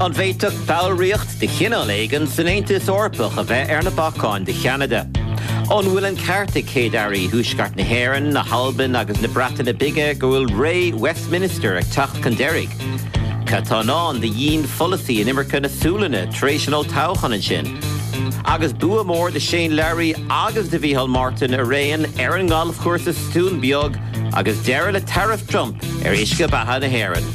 An bhféadfadh ballraíocht de chineál éigin san Aontas Eorpach a bheith ar na bacáin do Cheanada? An bhfuil an ceart ag Céad-Airí Thuaisceart na hÉireann, na hAlban agus na Breataine Bige go bhfuil ré Westminster ag teacht chun deiridh? Cad tá i ndán do dhian-pholasaí inimirce na Sualainne tar éis an olltoghcháin ansin? Agus bua mór do Shane Lowry agus do Mhicheál Martin araon ar an ngalfchúrsa sa Dún Beag agus deireadh le taraif Trump ar uisce beatha na hÉireann.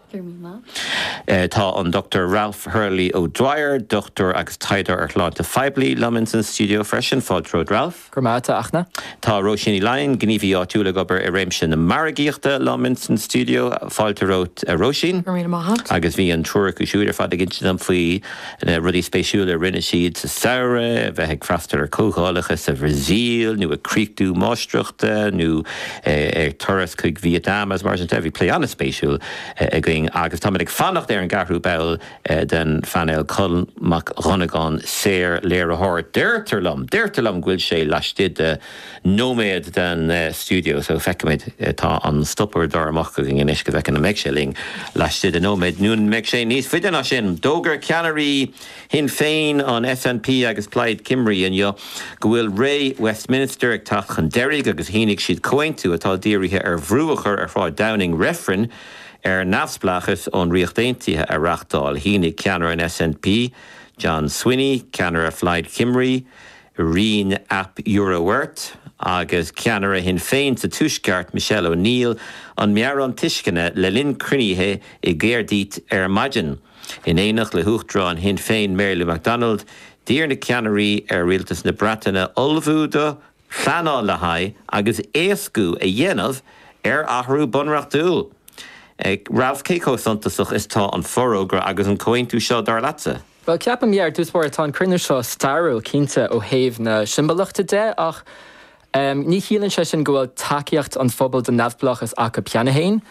Tá an Dr Ralph Hurley O'Dwyer, Dochtúir agus Taighdeoir ar Shláinte Phoiblí, liom ins an stiúideo freisin. Fáilte romhat Ralph. Go raibh maith a't a Fhachtna. Tá Róisín Ní Laighin, Gníomhaí Áitiúil ag obair i réimse na margaíochta, liom ins an stiúideo. Fáilte romhat, a Róisín. Go raibh míle maith a't. Agus bhí an triúr acu siúd ar fad ag insint dom faoi Na rudaí spéisiúla a rinne siad sa samhradh, bheith ag freastal ar chomhdhálacha sa Bhrasaíl, nó ag críochnú máistreachta, nó ar turas chuig Vietnam agus mar sin de. Bhí plé an-spéisiúil againn agus táimid ag fanacht ar an gceathrú ball den phainéal, Colm Mac Donnagáin, saor-léiritheoir, deirtear liom, deirtear liom go bhfuil sé laistigh de nóiméad den stiúideo so feicimid tá an stopuaireadóir amach againn anois go bhfeicfimid an mbeidh sé linn laistigh de nóiméad nó an mbeidh sé níos faide ná sin. D'fhógair ceannairí Shinn Féin, an SNP agus Plaid Cymru inniu go bhfuil ré Westminster ag teacht chun deiridh agus shínigh siad comhaontú atá dírithe ar bhrú a chur ar Shráid Downing reifreann ar neamhspleáchas ón Ríocht Aontaithe a reáchtáil. Shínigh ceannaire an SNP, John Swinney, ceannaire Phlaid Cymru, Rhun ap Iorwerth agus ceannaire Shinn Féin sa Tuaisceart, Michelle O'Neill, an meabhrán tuisceana le linn cruinnithe i gCaerdydd ar maidin. In éineacht le hUachtarán Shinn Féin Mary Lou McDonald, d'iarr na ceannairí ar Rialtas na Breataine ullmhú do, pleanáil le haghaidh agus éascú a dhéanamh ar athrú bunreachtúil. Ralph, cé chomh suntasach is tá an forógra agus an comhaontú seo, dar leatsa? Bhuel, ceapaim, yeah, ar dtús báire, tá an cruinniú seo stairiúil, cinnte, ó thaobh na siombalachta de, ach ní chiallaíonn sé sin go bhfuil tacaíocht an phobail don neamhspleáchas acu cheana féin,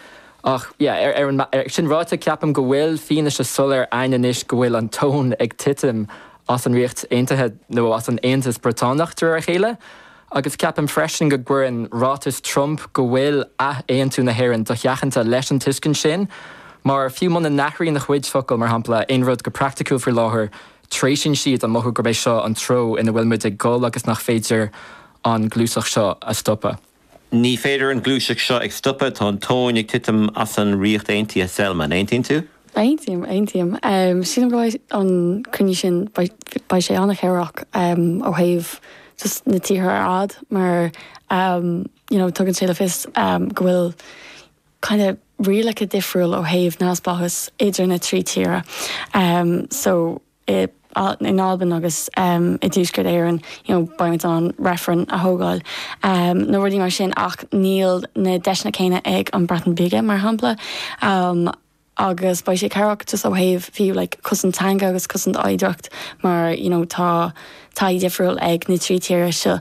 ach yeah, ar an, sin ráite, ceapaim go bhfuil fianaise soiléir a'inn anois go bhfuil an tóin ag titim as an Ríocht Aontaithe, nó as an Aontas Briotánach, de réir a chéile, Agus ceapaim freisin go gcuireann ráiteas Trump go bhfuil ath-aontú na hÉireann dosheachanta leis an tuiscint sin, mar fiú muna n-athraíonn a chuid focal, mar shampla, aon rud go praiticiúil faoi láthair, treisíonn siad an mothú gurb é seo an treo ina bhfuil muid ag dul agus nach féidir an gluaiseacht seo a stopadh. Ní féidir an gluaiseacht seo a stopadh, tá an tóin ag titim as an Ríocht Aontaithe, Selma, an aontaíonn tú? Aontaím, aontaím. Sílim go mbeidh an cruinniú sin, beidh sé an-chabhrach ó thaobh just na tíortha ar fhad mar you know tugann sé le fios go bhfuil kind of rialacha difriúil ó thaobh neamhspleáchas idir na trí tíre. So. i nAlbain agus i dTuaisceart Éireann, you know beidh muid in ann reifreann a thógáil um nó rudaí mar sin ach níl na deiseanna céanna ag an Breatain Bige mar shampla um agus beidh sé cabhrach just ó thaobh fiú like cosaint teanga agus cosaint oidhreacht mar you know tá taithí difriúil ag na trí tíre seo